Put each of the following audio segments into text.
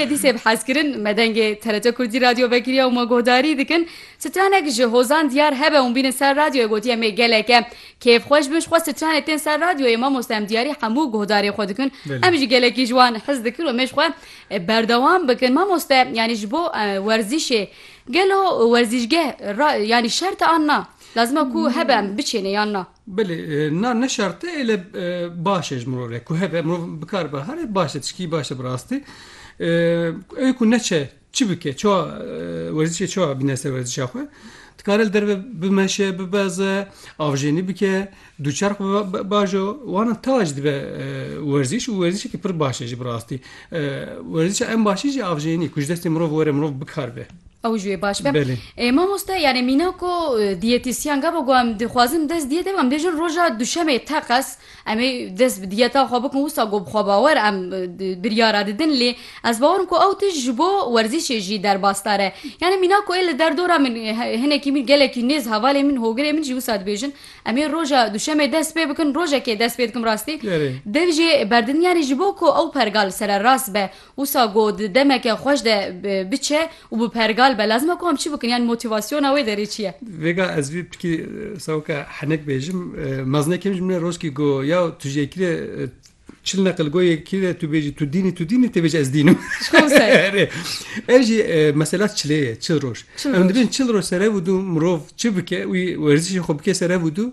Dîsê bi hezkirin me dengê TRT Kurdî radyo vekiriya û me guhdarî dikin. Stranek ji hozan diyar hebe hûn bînin ser radyoyê gotî em ê gelek e. Kêfxweş bin ji xwe stranê tên ser radyoyê mamoste em diyarî hemû guhdarê xwe dikin. Em jî gelekî ji wan hez dikin û em ê ji xwe berdewam bikin. Mamoste yanî ji bo werzîşê gelo werzîşgeh yanî şert e an na? Lazim e ku hebe em biçêne yan na? Belê, na ne şert e lê baş e ji mirov re ku hebe mirov bikare be herê baş e tişkî baş e bi rastî. Ew ê ku neçe çi bike çawa werzîşê çawa bîne ser werzîşa xwe. Dikare li derve bimeşe, bibeze, avjênî bike, dûçerx bibe bajo. Wana tawa jî dibe werzîş û werzîşekî pir baş e jî bi rastî. Werzîşa en başî jî avjênî ku ji destê mirov were mirov bikar be. Ew jî wê baş be. Belê. Ê mamoste yanî mîna ku dîyetîsyen gava ku em dixwazin dest dîyetê bim em dê jin roja duşemê teqez em ê dest bi dîyeta xwe bikin wisa ku bi xwebawer em biryara didin lê ez bawer im ku ew tişt ji bo werzîşê jî derbasdar e. Yanî mîna ku ê li derdora min hinekî min gelekî nêz hevalên min hogirên min jî wisa dibêjin em ê roja duşemê dest pê bikin rojekê dest pê dikim rastî Erê. dev jê berdidin yanî ji bo ku ew pergal sererast be Wisa ku di demeke xweş de biçe û bi pergal be lazim e ku em çi bikin yan motivasyona wê derê çi ye? Vêga ez vî pirkî sewke henek bêjim. Mezine kêm ji min re roşkî ku ya tu ji yekî re çil neqil goy yekî re tu bêjî tu dînî tu dînî tê bêjî ez dînim. Ev jî mesela çilê ye çil roj. Em dibin çil roj serev û du mirov çi bike wî werzişê xwe bike serev û du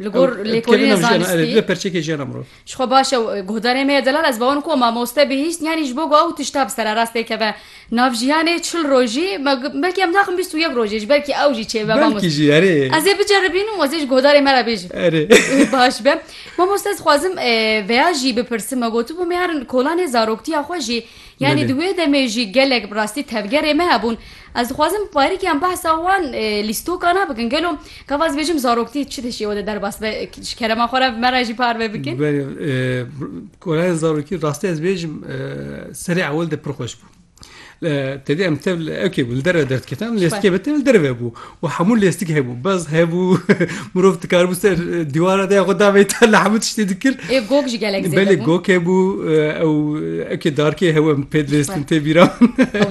Li gor lêkolînê zanistî li perçekê jiyana mirov. Ji xwe baş e guhdarê me ye delal ez bawer ku mamoste bihîst yanî ji bo ku ew tişta bi sererastê keve nav jiyanê çil rojî belkî em naxim bîst û yek rojê ji belkî ew jî çêbe belkî jî erê ez ê biceribînim û ez ê ji guhdarê me re bêjim erê baş be mamoste ez xwazim veya jî bipirsim me gotibû mêrin kolanê zaroktiya xwe jî Yanî di wê demê jî gelek bi rastî tevgerê me hebûn. Ez dixwazim bi barikiyan behsa wan lîstokan a bikin. Gelo gava ez bêjim zaroktî çi di şêwe de derbas be ji kerema xwe re me re jî parve bikin? Belê kolayên zarokî rastî ez bêjim serê ewil de pir xweş bû. Tedê em tev li ewkê bû li derve derdiketin em lê eskê me tev li derve bû. û hemû lêstik hebû bez hebû mirov dikaribû ser dîwara de ya xwe davêta li hemû tiştê dikir ê gog ji gelek belê gog hebû ew ekê darkê hew em pê dilêstin tê bîra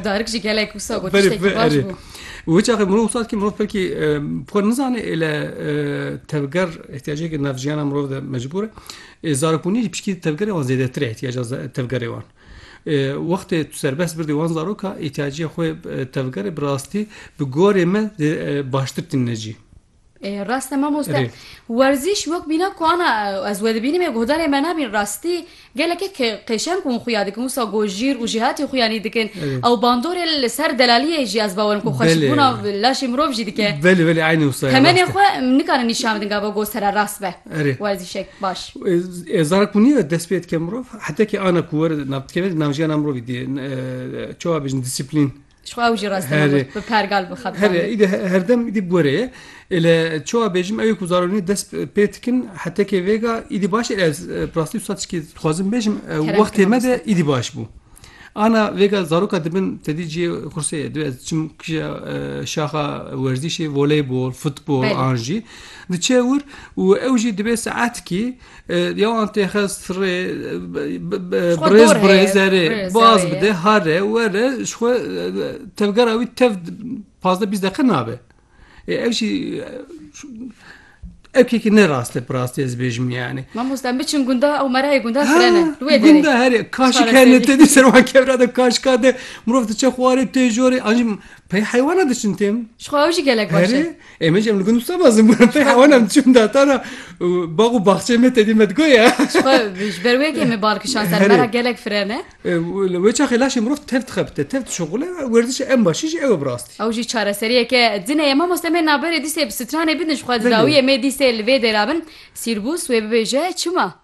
darik ji gelek wisa got baş bû û hiç axê mirov sat ki mirov pelkî xwe nizane ê le tevger ihtiyacekî navjiyana mirov de mecbûr e zarokbûnî pişkî tevgerê wan zêdetir e ihtiyaca tevgerê wan Wextê tu serbest birdî wan zaroka îhtîyaciya xwe tevgerê bi rastî bi gorê me baştir tîne cî. Rast e mamoste. Werzîş wek bîne ku ana ez wedibînim ê guhdarê me nabîn rastî gelekî qêşeng wan xuya dikin wisa ku jîr û jêhatî xuyanî dikin ew bandorê li ser delaliyê jî ez bawerim ku xweşikbûna laşê mirov jî dike. Belê belê eynî wisa ye. Temenê xwe nikarin nîşan bidin gava ku sere rast be. Erê. Werzîşek baş. E, zara ku niye dest pê dike mirov, heta ki ana ku were navdikeve di navjiyana mirovî dê e, çawa bêjin disiplîn. Şu ew jî rastî Herê. bi pergal bi xebtan. Herê, îdî he- herdem îdî bi were ye. Ele çawa bêjim ew ku zara niye dest pê dikin, heta ki vêga îdî baş e. Ez e, bi rastî wisa tişkî dixwazim bêjim, e, Kerem wextê me de Kırmızı. îdî baş bû. Ana vêga zaroka dibin tedî ciyê xursê ye divê ez çim kişa şaxa werzîşê voleybol, futbol an jî diçe wir û ew jî divê saetkî ya an têxe sirê birêz birêzerê baz bide hare were ji xwe tevgera wî tev pazdeh bîst deqe nabe. E, ev jî erkekî ne rast e bi rastî ez bêjim yani. Mamoste em biçin gunda ew merayê gunda kirene. Wê derê. Gunda herê kaşik herne te dî ser wan kevra de kaşika de mirov diçe xwarê tê jorê an jî pey heywana diçin têm. Ji xwe ew jî gelek baş e. Em jî em li gund wisa mezin bûn pey heywana em diçin datana bax û baxçeyê me te dî me digoye. Ji ber wê kê me bal kişan ser mera gelek firene. Li wê çaxê laşê mirov tev dixebite, tev dişuxule, werzişê en başî jî ew e bi rastî. Ew jî çareseriyeke din e. Ya mamoste me naberê dîsê bi stranê bidin ji xwe didawî em ê dîsê li vê dêra bin. Sîrbûs wê bibêje çima?